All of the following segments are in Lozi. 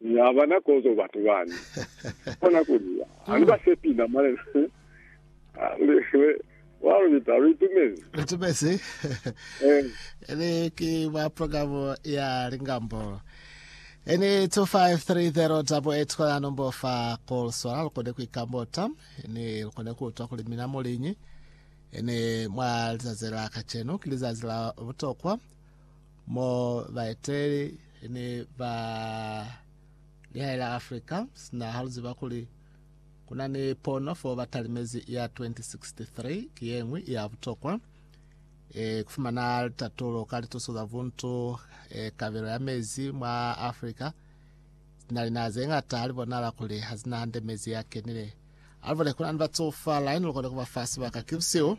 Ni ha bana kozo batu bani. Ni kona kuli, Ha ni ba sepi na Malena. Wa lubita, lu itumezi. Lu itumezi. Ili ki mwa program ya Lingambo. Ini 25308 kola nombo fa call swala lu kone ku ikambota. Ini lu kone ku utwa kuli mina mu liñi. Ini mwa lizazi la kacenu ki lizazi la butokwa. mo baeteleli ne ba lihae la Africa sina haluziba kuli kuna ni pono fo batalimezi ya 2063 ki yeñwi ya butokwa e, kufumana litatulo ka lituso za buntu e, kabelo ya mezi mwa Africa sina linaha zeñata halibonala kuli hazina hande mezi ya kenile alibole kuna ni batsofa line lukone kuba fa sibaka kibusio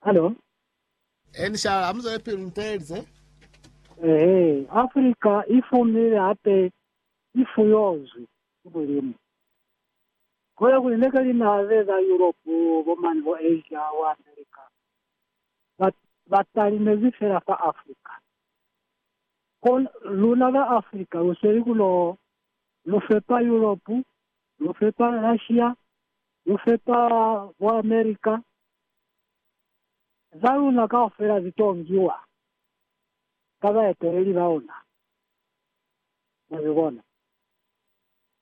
Halo. He ni shala, ha mu zwelepili ni teelize. Ehe, Afrika i fumile hape i fuyozwi ki Mulimu. Kola kuli neke linaha ze za Yuropu, bo mane bo Asia, bo Amerika, ba, ba talimezi fela fa Afrika. Ko, luna ba Afrika lu sweli ku lo, lu fepa Yuropu, lu fepa Russia, Lu sepa bo America. Za luna kaufela zi to ngiwa ka baeteleli ba ona. Mwa zi bona?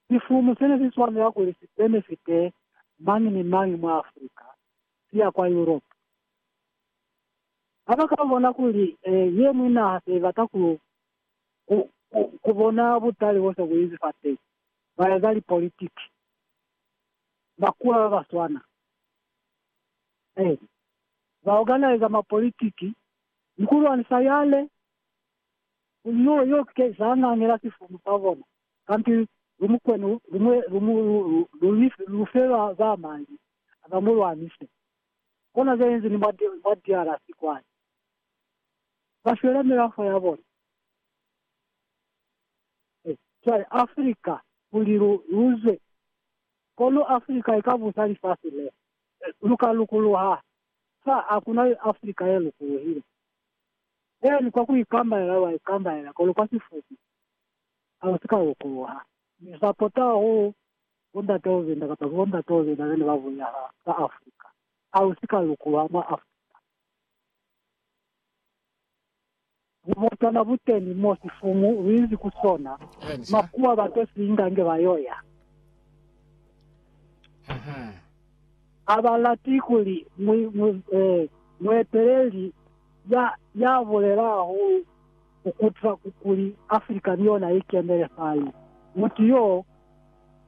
Sifumu sene si swanela kuli si benefite mañi ni mañi mwa Africa, si ya kwa Europe. Ha ba ka bona kuli ye ñwi naha se i bata ku, ku, ku, ku bona butali bo se bu inzi fateñi, ba eza lipolitiki. bakula ba ba swana. Eli, ba oganaiza mwa politiki ni ku lwanisa yale kuli yo yo ke za ngangela sifumu sa bona, kanti lu mukwenu lumwe lu mu lu lu lu li lu fe ba ba mali ba mu lwanise. Kona ze inzi ni mwa mwa DRC kwani. Ba shwela milafo ya bona. Ee, cwale Afrika, kuli lu, lu zwe. Kono Afrika ika busa lifasi le. Lu ka lukuluha. Fa hakuna Afrika ye lukuluhile. Eeni, kwa ku ikambalela lwa ikambalela, kono kwa sifupi, ha lu si ka lukuluha. Ni sapota hahulu Bondate Ovenda, kapa ki Bondate Ovenda bene ba bulela ha, ha Afrika. Ha lu si ka lukuluha mwa Afrika. Bubotana buteni mo sifumu luinzi ku sona, makuwa ba to si inga nge ba yo ya. Ha ba lati kuli mueteleli ya bulela hahulu ku kuta kuli Africa ni yona i kenele fani. Mutu yo,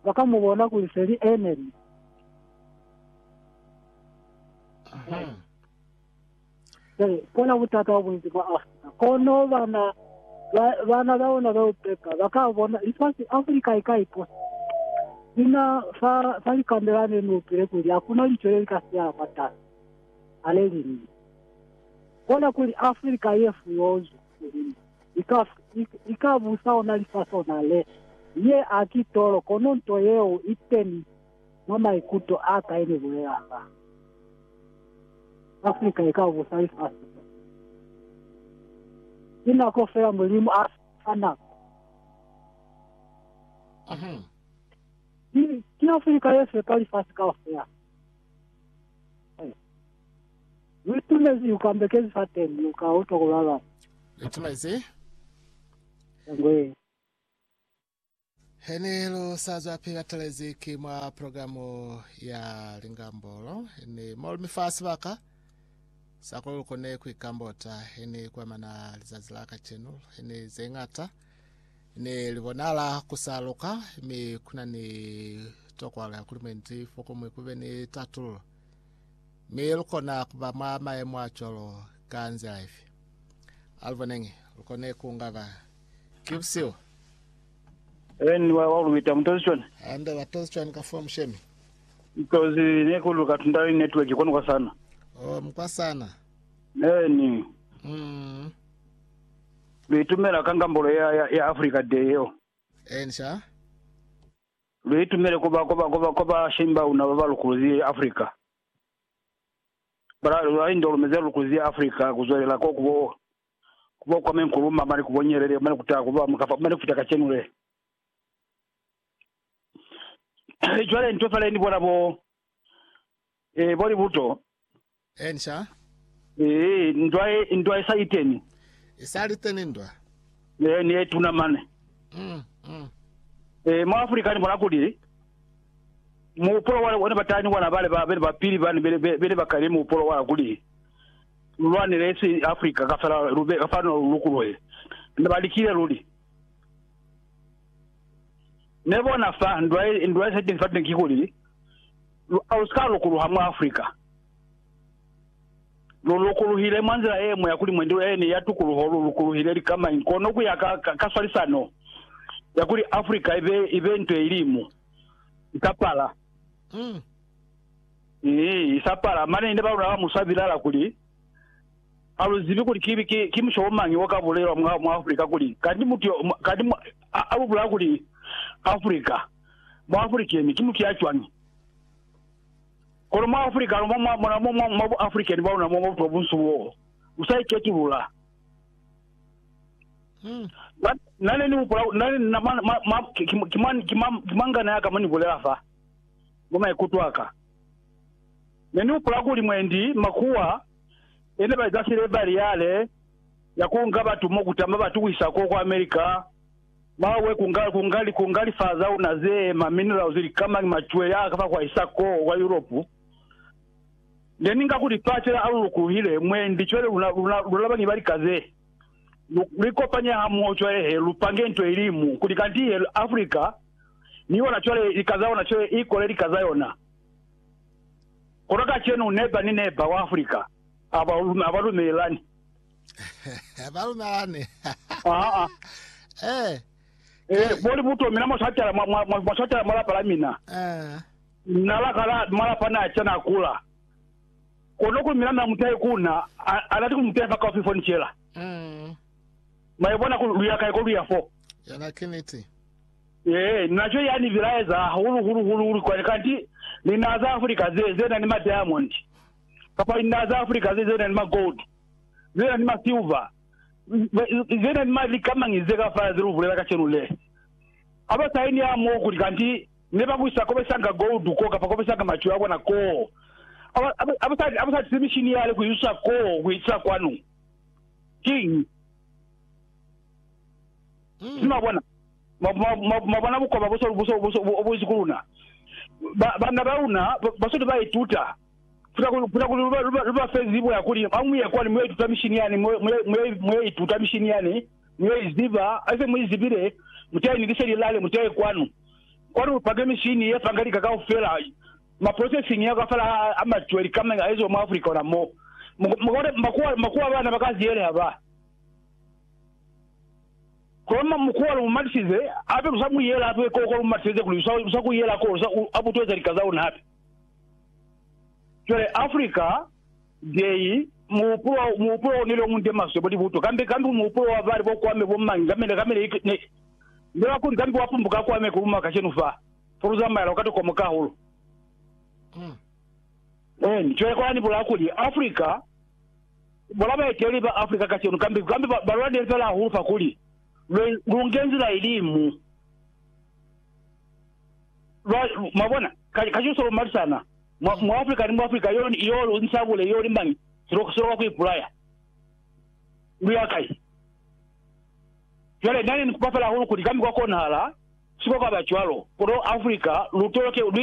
ba ka mu bona kuli se li enemi. Ee, kola butata bo bunzi mwa Afrika. Kono bana ba, bana ba ona ba upepa ba ka bona lifasi Afrika i ka iposa sina fa, fa likande la ne ni utwile kuli hakuna lico le li ka sihala mwatasi. Haleluya! Kola kuli Afrika ye fuyozwi ku Mulimu i ka, i, i ka busa ona lifasi ona le. Ye a ki tolo, kono nto yeo i teni. Mwa maikuto aka ini bulelanga Africa ika ubusa lifasi le. Ki nako fela Mulimu a fa nako. Ki, ki Africa ye fepa lifasi kaufela. Hey. Luitumezi yu kambekezi fa teni, lu ka utwa ku lalama. Luitumezi. Ngwe. He ne lu sa zwa pili batalezi ki mwa programu ya Lingambolo, he ni mo lu mi fa sibaka sa kuli lu kone ku ikambota. He ni kwa mana lizazi la kacenu, he ni ze ñata ne li bonala ku sa luka, mi ku na ni tokwalo ya kuli mwendi fokomuñwi ku be ni tatululo. Mi lu kona ku ba mwa mayemo a cwalo ka nzila ifi? A lu boneñi. Lu kone ku ngaba Ki busihu. Eni wa wa luita mutozi chwani? Anda ba tozi chwani ka fwa mushemi? Mutozi ne kulu ka tunda ni network kwani kwa sana. Oh, mkwa sana. Eni. Mm. Luitumela ka ngambolo ya ya, ya Africa Day yo. Eni sha. Luitumele kuba kuba kuba kuba shimba una baba lukuluzi Africa. Bara lwa indo lumeze lukuluzi Africa kuzwelela ko kubo ku ba kwa menkulu ma mane ku bo nyelele mane ku taha ku ba mukafo mane ku fita kacenu le. Cwale nto fale ni bona bo, eh, bo libuto. Eh, nca. Eh, ndwa ye, ndwa ye sa liteni. E sa liteni ndwa. Eh, ni ye tuna mane. Mm, mm. Eh, mwa Afrika ni bona kuli, muupolo wale one batani wana bale ba bene ba pili bane bene bene ba kale muupolo wala kuli lu lwanele esi Africa ka fela lu be fano lu lukuluhe. Ne ba likile luli. Ne bona fa ndwa ye, ndwa ye setezi fateñi kikuli, lu, a lu si ka lukuluha mwa Africa. Lu lukuluhile mwa nzila ye ñwi ya kuli mwendi ene ya tukuluho lu lukuluhile likamañi, kono ku ya ka, ka, ka swalisano ya kuli Africa i be, i be nto ye ilimu, i ka pala. Mm. Ni isapala. Mane ninde balula ka muswa bilala kuli, Aluzibi kuli ki, ki, ki mushobo mañi wa ka bulelwa mwa, mwa Afrika kuli, kandi mutu yo, kandi mu, a, a lubula kuli Afrika, mu African ki mutu ya cwañi? Kono mwa Afrika no, mwa, mwa, mwa, mwa, mwa bu African bwa luna, mwa, mwa butu bo bunsu bo, musaiketulula. Hmm. Na, nane ni hupula, nane, na, ma, ma, ma, ki, ki, ki, ma, ki, ma, ki mangana ya ka mo ni bulela fa. mwa maikuto a ka. Ne ni hupula kuli mwendi makuwa e ne ba eza sile bariyale ya ku nga batu mo ku tama ba tuwisa ko kwa America, mawe, ku nga, ku nga, ku nga lifaa za luna ze, ma minerals, likamañi, macwele a ka fa kwa isa ko kwa Europe. Ne ni nga kuli fase la alulukuhile mwendi cwale luna, luna, luna bañi ba lika ze. Lu, lu ikopanye hamoho cwale he lu pange nto ilimu kuli kanti he Africa ni ona cwale lika za ona cwale i kole lika za yona. Kono kacenu neba ni neba wa Afrika aba aba lumelelani. Aba lumelelani. Aa. Eh. Eh, boli buto mina mwa swatela mwa mwa mwa swatela mwa lapa la mina. Eh. Nala kala malapa na cha na kula. Kono ku mina na mutai kuna ana ti ku mutefa ka ofifo ni chela. Mm. Mai bona ku luya kai ko luya fo. Yana kiniti. Ee, naco ya ni bilaeza hahulu hulu hulu hulu kwani kanti linaa za Africa ze, ze na ni ma diamond, kapa linaa za Africa ze, ze na ni ma gold, ze na ni ma silver, ze na ni ma likamañi ze ka fala ze lu bulela kacenu le. Ha ba sa eni ha moo kuli kanti ne ba kuisa kobesanga gold koo kapa kobesanga macwe a bona koo. Ha ba, ha ba, ha ba sa tisi mishini yale ku isusa koo ku itisa kwanu. Kiñi? Mi mwabona, mwabona bukoba bobusi ku luna, banna baluna basweli baituta kuta kuli lubafe zibo yakuli hamuye kwani muyo ituta mishini yani, muyo ituta mishini yani, muyo iziba, haise muizibile, muteye ni liseli lale, muteye kwanu, kwani lupake mishini yefanga lika kaufela, ma processing yako afela a mature, licoming, aeziwe mwa Africa ona mo, mukabona makuwa abana bakazieleha ba. Kono mukuwa lu mu matisize hape lu sa mu yela hape ko kwa lu matiseze kuli lu sa ku yela ko lu sa a butueza lika za luna hape. Cwale Africa Day muhupulo muhupulo o neli o munde maswe bo libuto kambe kambe muhupulo wa bali bo kwame bo mangi kambe kambe ne ne ne ba kuli kambe wa pumbuka kwame ku luma kashenu fa for lu zamayela ka tokomo ka hulu. Cwale kwa ni bula kuli Africa Bona baeteli ba Africa kacenu, kambi, kambi ba, ba lwanile fela hahulu fa kuli, Lwe, lu nge nzila ilimu. Lwa, mwabona, ka, ka cilusa lwa malisana, mwa, mwa Africa ni mwa Africa, yo, yo lu nsabule, yo li mañi, silo, silo ka ku ipulaya. Lu ya kai? Cwale, nane ni kupa fela hahulu kuli kambi kwa konahala, siko kaba cwalo, kono Africa, lu toloke, lu itoloke